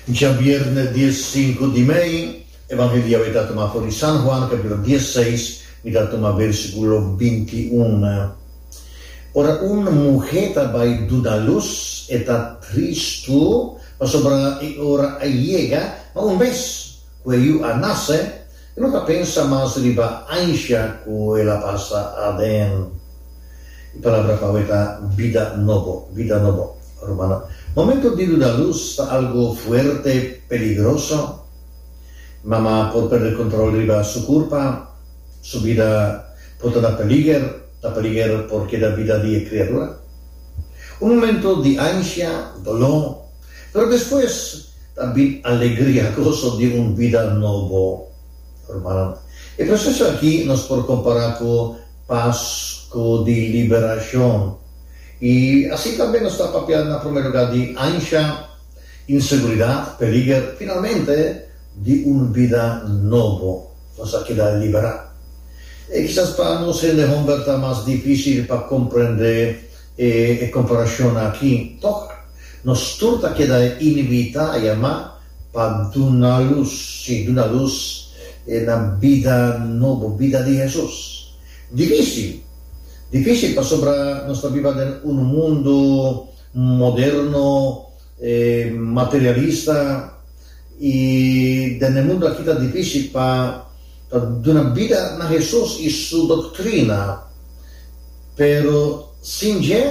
Djabièrnè dies sinku di mei, Evangelio Yahweh ta tumá for di San Juan, kapítulo dies seis, mi ta tuma bèrsikulo binti i un. Ora un muhé ta bai duna lus, e ta tristu pasobra e ora a yega, ma un bes ku e yu a nase, E lo ta pensa mas riba ansha cu el a pasa aden. E palabra pa awe ta bida nobo, vida nobo. Rumana, momento di lo da luz ta algo fuerte, peligroso. Mama por perde control riba su curpa. Su bida por ta na peliger, ta peliger por keda bida di e criadura. Un momento di ansha, dolor. Pero despues ta bin alegria, goso di un bida nobo. Rumannan, e proseso aki nos por kompará ku Pasko di Liberashon. I asi tambe nos ta papia na promé lugá di ansha, inseguridat, peliger, finalmente di un bida nobo. Nos a keda liberá. E kisas pa nos hende hòmber ta mas difísil pa komprendé e komparashonnan aki. Tòg? Nos tur ta keda inibí ta yama pa duna lus, sí, duna lus na bida nobo, bida di Hesus. Difísil? Difísil pasobra nos ta biba den unu mundu moderno, materialista, i den e mundu akí ta difísil pa ta duna bida na Hesus i su doktrina. Pero sin dje?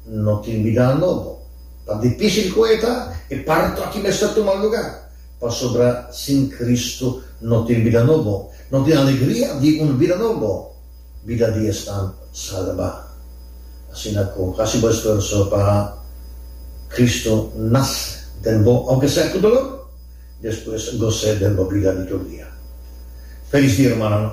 No tin bida nobo. Pa difisil ku e ta, e parto aki mester tuma luga. Pasobra sin Kristu no tin bida nobo. No tin alegria di un bida nobo, bida di esnan salba. Asina ku hasi bo esfuerso pa Kristu nase den bo, ounke sea ku dolor, despues gos'é den bo bida di tur dia. Felis dia, rumannan!